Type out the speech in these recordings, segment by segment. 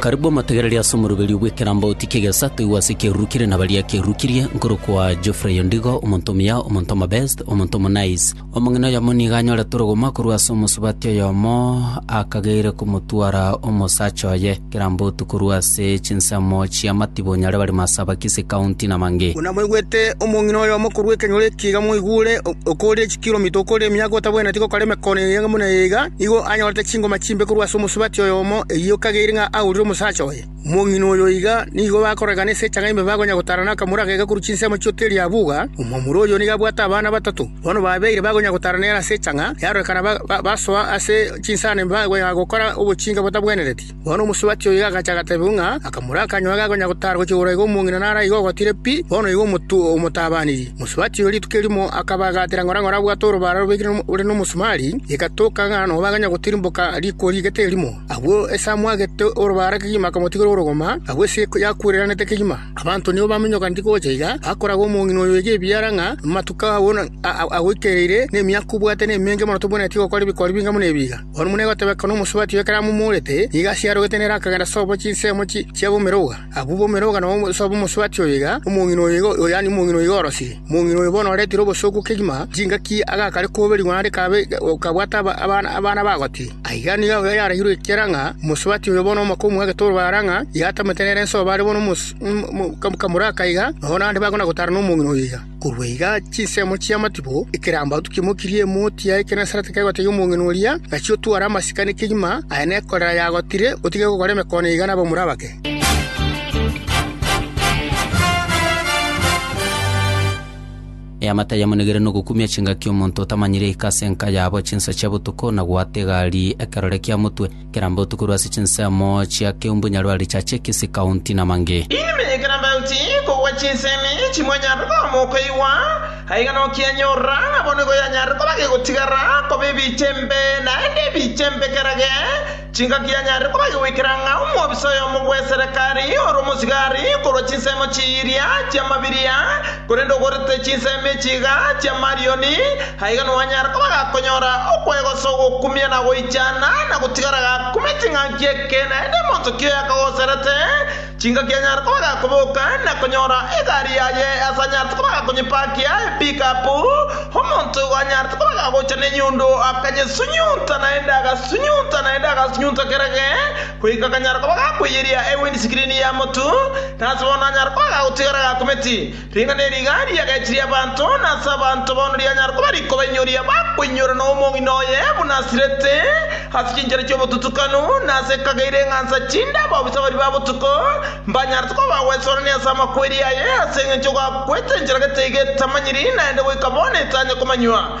Karibu omotegereria ase omoroberio bw'ekerambauti ki'egesaku ase ekeruru kire na baria ekeruru kirie, nkorokwa Geoffrey Ondigo, omonto omuya, omonto omobest, omonto omonice. Omong'ina oyomo nigo anyorete orogomo korwa ase omosubati oyomo, akageire komotwara omosacha oye kerambauti korwa ase chinsemo chi'amatibo onye are barimo ase Abakisi County na Mange. Buna mwaigwete omong'ina oyomo korwa ekenyoro eke iga mwaigure, okore Kilomita okore emiaka otabwenereti gokora emekono eyio buna eye iga, nigo anyorete chingoma chimbe korwa ase omosubati oyomo, eyio kageire ng'a aurire omosacha oye. Omong'ina oyo iga nigo bakorekana ase echanga ime bakonya gotara nakamura agega korwa chinsemo chio Teri Abuga. Omwamura oyo nigo abwate abana batato. Bono babeire bakonya gotara nere ase echanga, yarorekana basoa ase chinsano ime bakonya gokora obochinga botabwenereti. Bono omosubati oyo agacha agatebigwa ng'a akamura akanywa age akonya gotaara gochia igoro aiga omong'ina naro aiga ogotire pi, bono oigo omotwe omotabaanirie. Omosubati oyo rituko erimo akabagatera ng'ora ng'ora abwate orobara rubekire ore nomosumari, egatoka ng'a nobaganya gotirimboka riko rigete erimo. Agwo ase amwagete orobara kegima akamotigera orogoma, agwo ase yakwereranete kegima. Abanto nigo bamenyokaneti gocha iga bakoraga omong'ina oyo oiga ebiara ng'a amatuko agwo agoikereire, na emiaka obwate nemenge mono tobwenereti gokora ebikori binga buna ebi iga. Oromoni agotebeka nomosubati o ekaramu omorete, nigo ase arogete nere akagenda sobo chinsemo chi'abomeroga. Abwo bomeroga nabo sobo omosubati oyo iga, omong'ina oyo iga, yaani omong'ina oyo orosire. Omong'ina oyo bono oretire obosooku kegima, chingaki agakare koberigwa naende kabe kabwate abana abagoti. Aiga nigo yarairwe ekiara ng'a omosubati oyo bono omake omoa egetoro bara ng'a iga atamete nere ense oyo bare bono kamura aka iga, nonya naende bakona gotaarana nomong'ina oyo iga. Korwa iga chinsemo chi'amatibo ekerambato kimokirie emoti ya Ekenesarete kegotebia omong'ina oria, Gachia otware amasikani kegima aya nekorera yagotire, otige gokora emekone iga nabamura abake. Eamate ayamonigire nogokumia chingaki omonto otamanyire oika ase enka yabo chinsa chia botuko na goata egari ekerore kia motwe. Kera mbotuko korwa ase chinsemo chia Keumbu, Nyarwari, Chache, Kisii County na mangĩ. Inwe ekero mbauti kogwa chinsemi chimwanyare koamwa okoigwa, aiga nokianyorora, nabo nigo yanyare koba gegotigara koba ebiicha embe, naende ebiicha embe kera ge chingaki yanyare koba gegoikera ng'a omwobisa oyomo bw'eserekari ore omosigari korwa chinsemo chiiria chi'amabiria, Korende ogorete chinsemi echi iga chi'amarioni, aiga nowanyara koba gakonyora okwegosa ogokumia na goichana, na gotigara gakumia ching'aki eke naende monto ki oyakagoserete, chingaki anyare koba gakoboka na konyora egari yaye ase anyarete koba gakonyepakia epikapu, omonto igo anyarete koba gagocha nenyundo akanyesonyunta naende agasunyunta naende agasunyunta kerage, Goika kanyara koba gakweyeria ewe n'esikirini ya motu, na ase bono anyara koba gagotigara gakumeti. Ring'ana eri iga riagechirie abanto, na ase abanto bono rianyara koba rikobainyoria bakoinyora na omong'ina oye buna asirete, ase chinchera chi'obotutukanu, na ase ekageire eng'ansa chinde ababisa baria ba botuko mbanyarete koba bagwesorania ase amakweri aye, ase engencho gakwete enchera getaiga etamanyiri, naende goika bono etanya komanywa.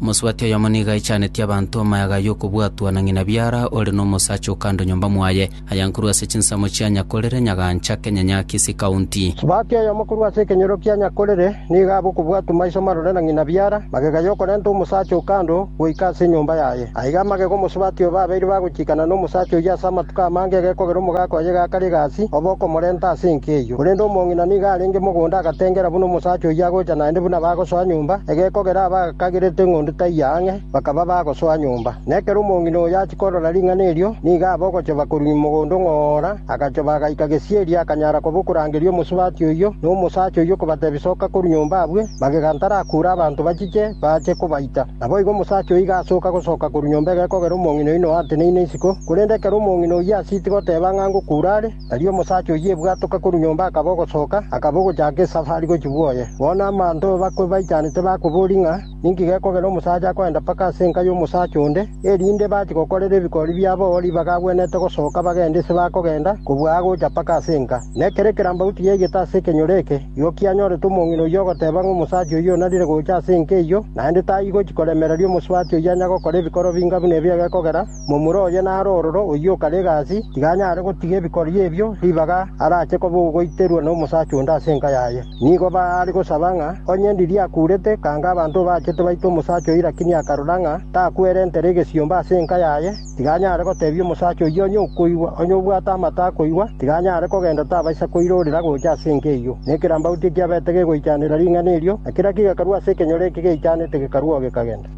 Mosubati oyomo nigo aichanetie abanto amayaga y'okobwatwa na ng'ina biara ore nomosacha o kando nyomba mwaye, ayankuru ase chinsemo chia Nyakorere, Nyagancha, Kenyanyaakisi County. Subati oyomo korwa ase ekenyoro kia Nyakorere, Nigo abe okobwatwa maiso marore na ng'ina biara, magega y'okorenta omosacha oo kando goika ase enyomba yaye. Aiga amagega omosubati oo babeire bagochikana nomosacha oyio ase amatuko amange egekogera omogaka oye gakare egasi, obe okomorenta ase enka eyio. Korende omong'ina nigo arenge mogonda agatengera buna omosacha oyio agocha naende buna bagosoa nyomba, egekogera abagagerete eng'ondi taiyo ang'e. Bakaba bagosoa nyomba, na ekero omong'ina oyo achia korora ring'ana erio, nigo abe ogochoba korwa mogondo ong'oora, agachoba agaika gesieri, akanyara koba okorangeria omosubati oyio na omosacha oyio kobatebia, Soka korwa nyomba abwe, magega ntarakuure abanto bachiche baache kobaita. Naboigo omosacha oyio iga asoka gosoka korwa nyomba egekogera omong'ina oyio noateneine isiko, korende ekero omong'ina oyio asieti goteba ng'a ngokuura are, tari omosacha oyio ebwatoka korwa nyomba akaba ogosoka, akaba ogochaka esafari gochia bwoye. Bono amanto bakwe baichanete bakoboria ng'a. Ninki gekogera omosacha akoenda mpaka ase enka y'omosacha onde, erinde bache gokorera ebikori biabo ribaga agwenerete gosoka bagende ise bakogenda kobua agocha mpaka ase enka? Na ekero ekerambaguti giaigete ase ekenyoro eke, igo kianyorete omong'ina oyio ogoteba ng'a omosacha oyio onarire gocha ase enka eyio, naende taigochi koremereria omosubati oyio anya gokora ebikoro binga buna ebio egekogera. Momura oye naro ororo oyio okare egasi, tiga anyare gotiga ebikorio ebio ribaga arache koba ogoiterwa nomosacha onde ase enka yaye. Nigo baare gosaba ng'a onye ndiria akurete, kanga abanto obachete baite omosacha oyio lakini akarora ng'a takwerentere egesiomba ase enka yaye, tiga anyare gotebia omosacha oyio onye okoigwa. Onye obwate amato akoigwa, tiga anyare kogenda tabaisa koirorera gocha ase enka eyio. Na ekerambauti ekiabete gegoichanera ring'ana erio, na kera kigekarwa ase ekenyoro eke geichanete gekarwa oo gekagenda.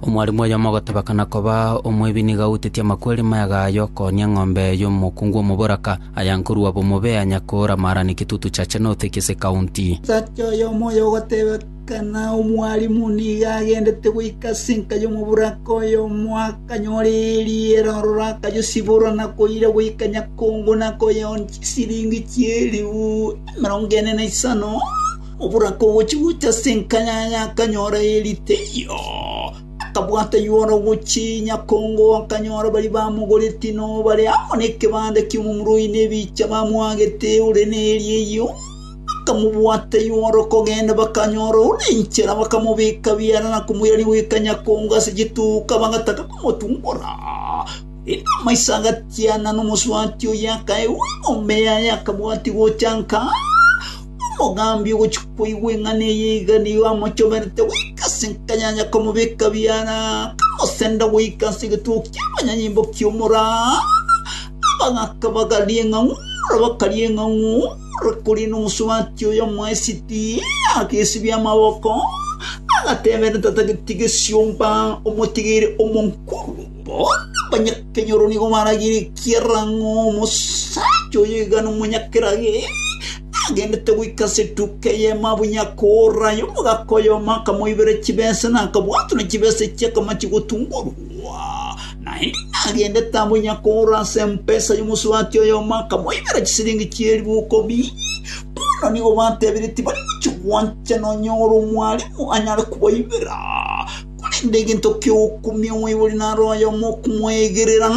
Omwarimu oyomo ogotebekana koba omwebi nigo autetie amakweri mega aya okooni eng'ombe y'omokungu omoboraka, aya nkorua bomobe, aya nyakoora maarani kitutu chache note ki'ase ekaunti. Omosacha oyomo oyo ogotebeka. Kana omwalimu nigo agendete goika ase enka y'omoboraka oyomo, akanyora eriera, ororo akayosibora na koira goika nyakongo na koyeonia chisiringi chi'elifu emerongo ene na isano. Oboraka ogochia gocha ase enka yaye akanyora eri teiyo. Akabwata ywora gochia nyakongo, akanyora baria bamogoreti nobare amo nekebanda ki'omomura oino ebicha bamoagete ore neri eyio. Bakamobwata igoro kogenda, bakanyora ore inchera, bakamobeka biara na komoirania goika nyakongo ase chituka, bagataka komotungora. Korende amaiso agatiana, na omosubati oye akaegwa egombe yaye, akabwatia gochanka. Omogambi ogochia koigwa eng'ana eye iga nigo amochoberete goika ase enka ya nyakomobeka biara, akamosenda goika ase egetugi ki'obonyanyimbo ki'omoraa. Abagaka bagaria eng'ang'u, na abakori eng'ang'u. Korende omosubati oyo omoesiti agesibia amaboko, agateebera tatageti gesiomba omotigeire omonkoro. Bono abanyakenyoro nigo barageire ekiagera ng'a omosacha oyo iga nomonyakerage, agendete goika ase etuka eye mabunya akoora aye omogaka oyomo akamoibera chibesa, na akabwatwa ne chibesa echi akamachi gotunguorwa. Naende agendete amo onye akoora ase empesa y'omosubati oyomo akamoibera chisiringi chi'eribu ikomi. Bono nigo batebirie tibari gochia gwancha nonya ore omwalimu anyare kobaibera, korende egento ki'ogokumia omoibori naro oyomo okomoegerera.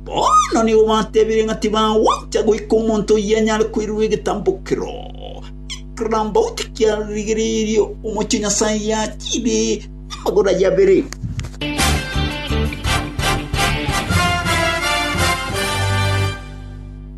Bono nigo batebirie ng'a tibagwancha goika omonto oyio anyare koirwa egetambo kero, ekero Naboti kiarigeirie omochie o Nyasae yachire. Amagoro ayio abere.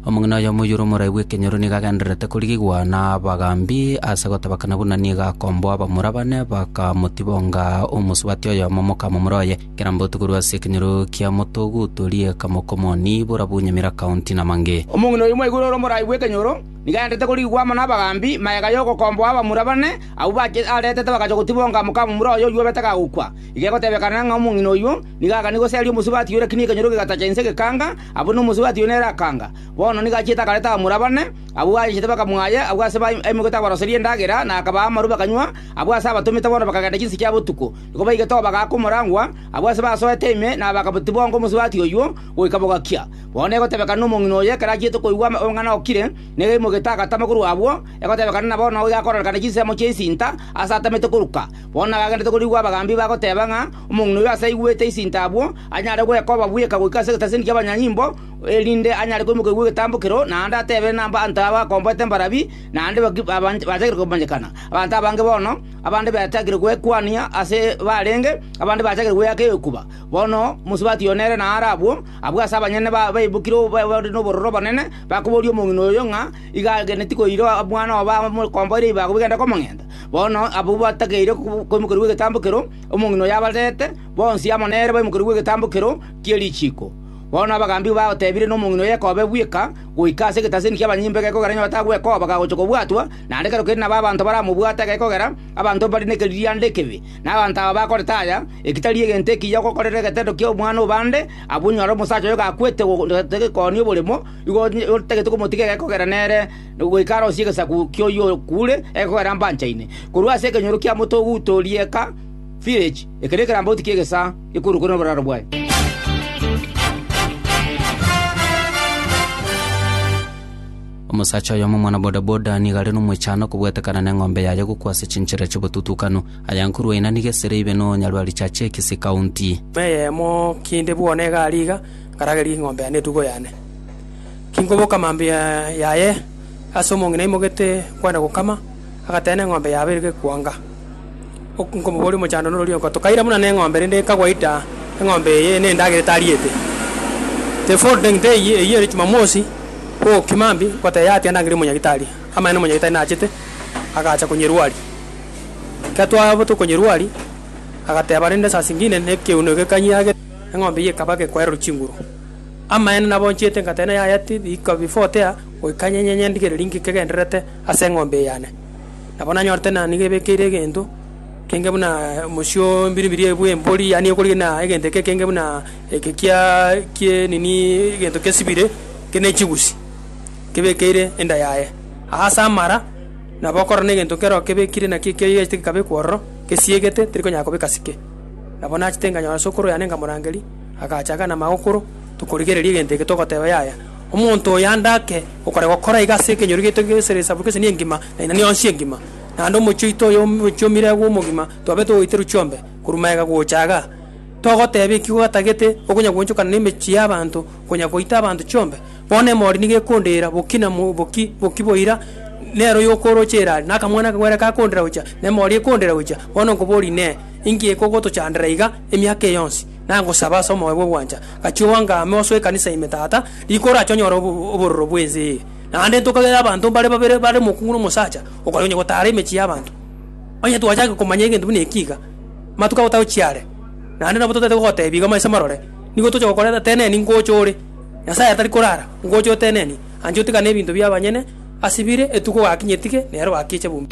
Omong'ina oyomo oyore omoraai bw'ekenyoro nigo agendererete korigigwa nabagambi ase gotabakana buna nigo akomboa abamura bane, bakamotibonga omosubati oyomo mokamomura oye. Kera mbauti korwa ase ekenyoro kia motoguto rieka mokomoni, borabu nyamira kaunti na mange. Omong'ina oyomo aigure ore omoraai bw'ekenyoro. Nigo aendete korigwa amo nabagambi, mayega y'ogokomboa abamura bane, abwo bachia aretete bagachia gotibonga mokamomura oye oyuobete gagokwa. Iga egotebekana ng'a omong'ina oyio nigo aganie goseria omosubati oyo lakini ekenyoro kegatacha inse gekanga, abwo nomosubati oyo nere akanga. Bono nigo achiete akareta abamura bane, abwo aechete bakamwaya agwo ase baimoke tabaroseria endagera, na akabaa amaru bakanywa, abwo ase abatomete bono bakagenda chinse chia botuko. Nigo baigete obogaaka omorangwa, abwo ase basoete ime na bagatibonga omosubati oyio goika bogakia. Bono egotebekana nomong'ina oyo ekero achiete koigwa omong'ana okire, negeimo getagatama korwa abwo, egotebekana na bono iga akoororekana chinsemo chi'esinta aase atamete koruka. Bono nagagenderete korigwa abagambi bagoteba ng'a omong'ina oyo aase aigwete esinta abwo, anyare goeka obabweka goika ase egetasini ki'abanyanyimbo, erinde anyare koimoka koigwa egetambo kereo, naende atebe nabaanto aba akomboete mbarabi, naende bachakire komanyekana. Abanto abange bono, abande bachakire gwekwania ase baarenge, abande bachakire gweaka egekuba. Bono mosubati oyo nere naro abwo. Abwo ase abanyene baibokire bare nobororo obonene, bakoboria omong'ina oyo ng'a igo ageneti koira omwana obo amokomboire ibago bigende komong'enta. Bono abwo batakeire koimokerwa gw'egetambo kero, omong'ina oyo abarete, bonsi amo nere baimokerwa gw'egetambo kero gie richiiko. Bono abagaambi bateebire nomong'ina oyo ekobe bweka goika ase egetaseni ki'abanyimbe gekogera onye batagwe ekoba gagocha kobwatwa, naende kero kende nabo abanto baramobwate gekogera abanto mbare nekeririanda ekebe. Na abanto aba bakoretaya, ekitari egento ekiya ogokorera egetendo ki'omwana o bande, abwo nyora omosacha oyo gakwete ogotoretwe gekooni oboremo, igo otagete komotiga egekogera nere goika arosie egesaku ki'oyio okuure egekogera mbanchaine. Korwa ase ekenyoro kia moto oguta o rieka, village, eke nekerambauti ki'egesaa ekorokwa noboraro bwaye. Omosacha oyomo omwana-bodaboda nigo are nomoichano okobwetekana neng'ombe yaye gokwa ase chinchera chi'obotutukanu. Ayankurwa ina nigo esere ibe no Nyarwaricha Chicks County. Nyuma eyemo kinde bwona egari iga, nkarageria eng'ombe yane etugo yane. Kinkoboka mambia yaye, ase omong'ina aimogete kwenda gokama, agatena eng'ombe yabeire gekwanga. Okomoboria omochando norori onkoto, kaira buna neng'ombe rende ekagwa ita, eng'ombe eye nendagera etariete. The following day, eyio eyio ere Jumamosi, bogokima mbe, ngoteba yaya tiga ndangere omonyagitari. Amaene omonyagitari nachete, agacha konyerwaria. Ekero twaba tokonyerwaria, agateba rende saa zingine nekegeno eke kanyage, eng'ombe eyio ekaba gekwererwa chinguru. Amaene nabo nchete ngateba na yaya ti riko before tea, goika nyenye nyendigereri ng'ike gendererete ase eng'ombe eye yane. nabo nanyorete na nigo ebekeire egento kenge buna omosio o mbiri mbiri bwa embori, yaani ekorigia buna egento eke kenge buna eke kiaa kie nini egento kesibire kere ne chibusi, kebekeire enda yaye. Aase amara, nabo okorora na egento kero kebekire naki ekiagechete gekabekwa ororo, kesiegete teri konyara kobeka sike. Nabo nachete nkanyora sokoro yane nkamorangeria, agacha akanama agokoro, tokorigereria egento eke togoteba yaya. Omonto oyo ande ake okore gokora iga ase ekenyoro giaito gesere esabu gese nengima, na inani yonsi engima. Naende omochie oito oyo omochie omire agwo omogima, twabete ogoiterwa chiombe korwa magega gocha igaa. Togoteba ekigo gatagete okonya gwoonchokana nemechie y'abanto konya goita abanto chiombe. Bono emori nigo ekondeera bokina mo boki boki boira, nero yokooroche erari, na akamwana akagwere kakondeera gocha, na emori ekondeera gocha. Bono nkoboria inee, inki ekogotochandera iga emiaka eye yonsi? Nagosaba ase omoyo bw'ogwancha, gachia oange amo ase ekanisa ime, Tata, rika orache onyore obororo bw'ense eye. Naende ntokagere abanto mbare babere bare omokungu na omosacha okaria onye gotaara emechie y'abanto. Onye twachake komanya egento buna eki iga, amatuko agotaka gochia are, naende nabo totaete gogoteebia iga maiso marore, nigo toche gokorera teneni ngocha ore. Nyasae atari korara, ngocha oteneni, ancha otigane ebinto bi'abanyene ase bire, etuko gakinyetige, nero bakeche buna.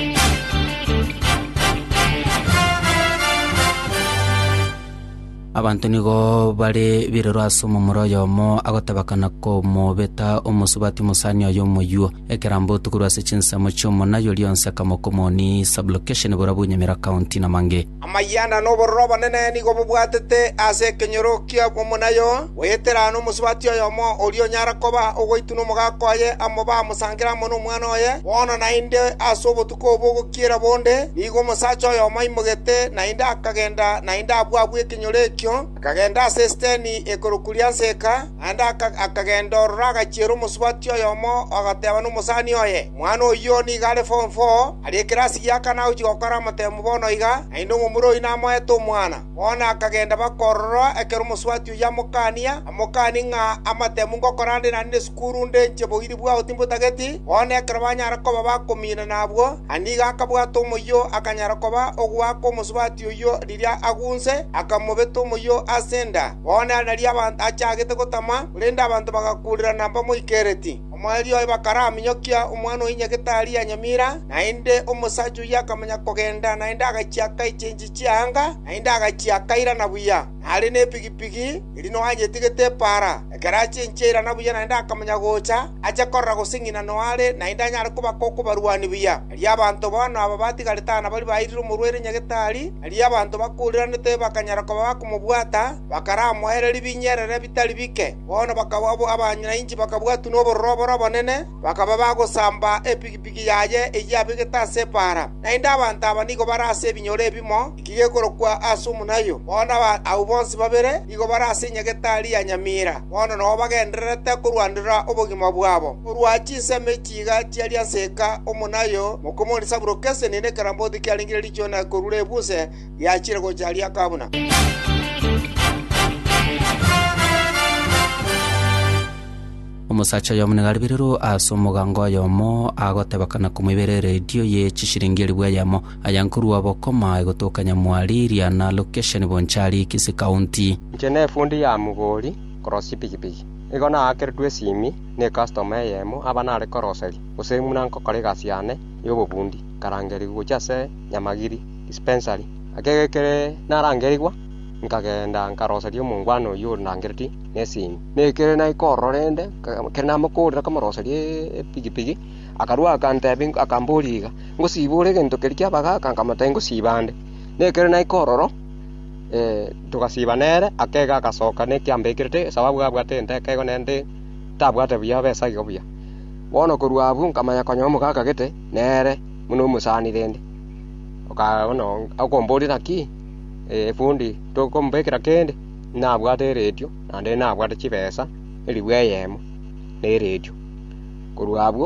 Abanto nigo bare biroro ase omomura oyomo agotabakana komobeta omosubati omosani oye omoyio. Ekerambe otu korwa ase chinsemo chi'omonayi oria onsi akamoka omoni Sublokesheni borabu Nyamira County na mange. Amayanda na obororo obonene nigo bobwatete ase ekenyoro kia omonayi oo, goyeterana omosubati oyomo oria onyara koba ogoitwa nomogaka oye amo bamosankere amo nomwana oye, bono naende ase obotuko Koba ogokiera bonde, nigo omosacha oyomo aimogete naende akagenda naende abwo abwo ekenyoro ekio, akagenda ase esiteni ekorokwa Rianseka, naende akagenda ororo agachiera omosubati oyomo agateba nomosani oye, Omwana oyio nigo are form four, are ekerasi gia kana agochia gokora amatemu bono iga, naende omomura oyio namoete omwana. Bono akagenda bakorora ekero omosubati oyio amokania, amokanie ng'a, Amatemu ngokorandera nde sukuru nde inche boiri bwao timbotageti. Bono ekero banyara koba bakominana abwo, Aniga akabwata omoyio akanyara koba ogoaka omosubati oyio riria agunse, akamobeta omoyio ase enda. Bono ere nario abanto achagete gotama, korende abanto bagakurirana mbamoikereti. Omoerio oye bakaraminyokia omwana o inye getari ya nyamira, naende omosacha oyio akamanya kogenda, naende agachia akaicha enchera. chianga, naende agachia akairana buya. Nare nepigipigi erio Noa anyetigete epaara. Ekero achia inche airana buya naende akamanya gocha, ache korora gose ng'ina Noa are, naende anyare kobaka okobarwani buya. Erio abanto bono aba batigarete aa nabaria bairire omorwaire nyagetari, erio abanto bakuriranete bakanyara koba bakomobwata, bakaramoererie binyerere bitari bike. Bono bakaba abanyinanchi bakabwatwa nobororo obore obonene. Bakaba bagosamba epigipigi yaye eyio abegete ase ebaara. Naende abanto aba nigo bare ase ebinyoro ebimo eki gekorokwa Asumu-nayo. Bono abanto abwo bonsi babere nigo bare ase enyagetari ya nyamira, bono nobo bagendererete korwanera obogima bwabo. Korwa chinsemo echi iga chiaria nseka, omonayo mokomonisa buroka esenini nekeramboti kiarengire richiuna korure ebuse riachire gocha riakaa buna. Omosacha oyomo nigo ariberirwe ase omoganga oyomo, agoteba kana komoibera eredio ye chishiringi elifu eyemo, aya nkorua obokoma aye gotoka nyamwari iria na lokesheni Bonchari, Kisii County. Inche nefundi ya mugori korosia chipigipigi. Nigo naakeretwe esimi ne customer eyemo aba nare koroseria, gose buna nkokora egasi yane y'obofundi, nkarangerigwa gochia ase Nyamagiri Dispensary. Ekero kere narangerigwa, nkagenda nkaroseria omongwana oyio orangeretie. nesimi, na ekero naikoorora rende, ekero namokoorera komoroseria epigipigi, akarua agantebia akamboria iga, Ngosiba ore egento keria kiaba gaka? Nkamotebia ngosiba nde. Na ekero naikoororo togasiba nere, akega agasoka na ekiambekirete, sababu abwate egento ekego naende tabwate buya abe esage buya. Bono korwa abwo nkamanya konya omogaka gete nere buna omosani rende. Oka bono akomboria naki efundi tokombekera kende? Nabwate eretio, naende nabwate chibesa, erigwa eyemo neretio. Korwa abwo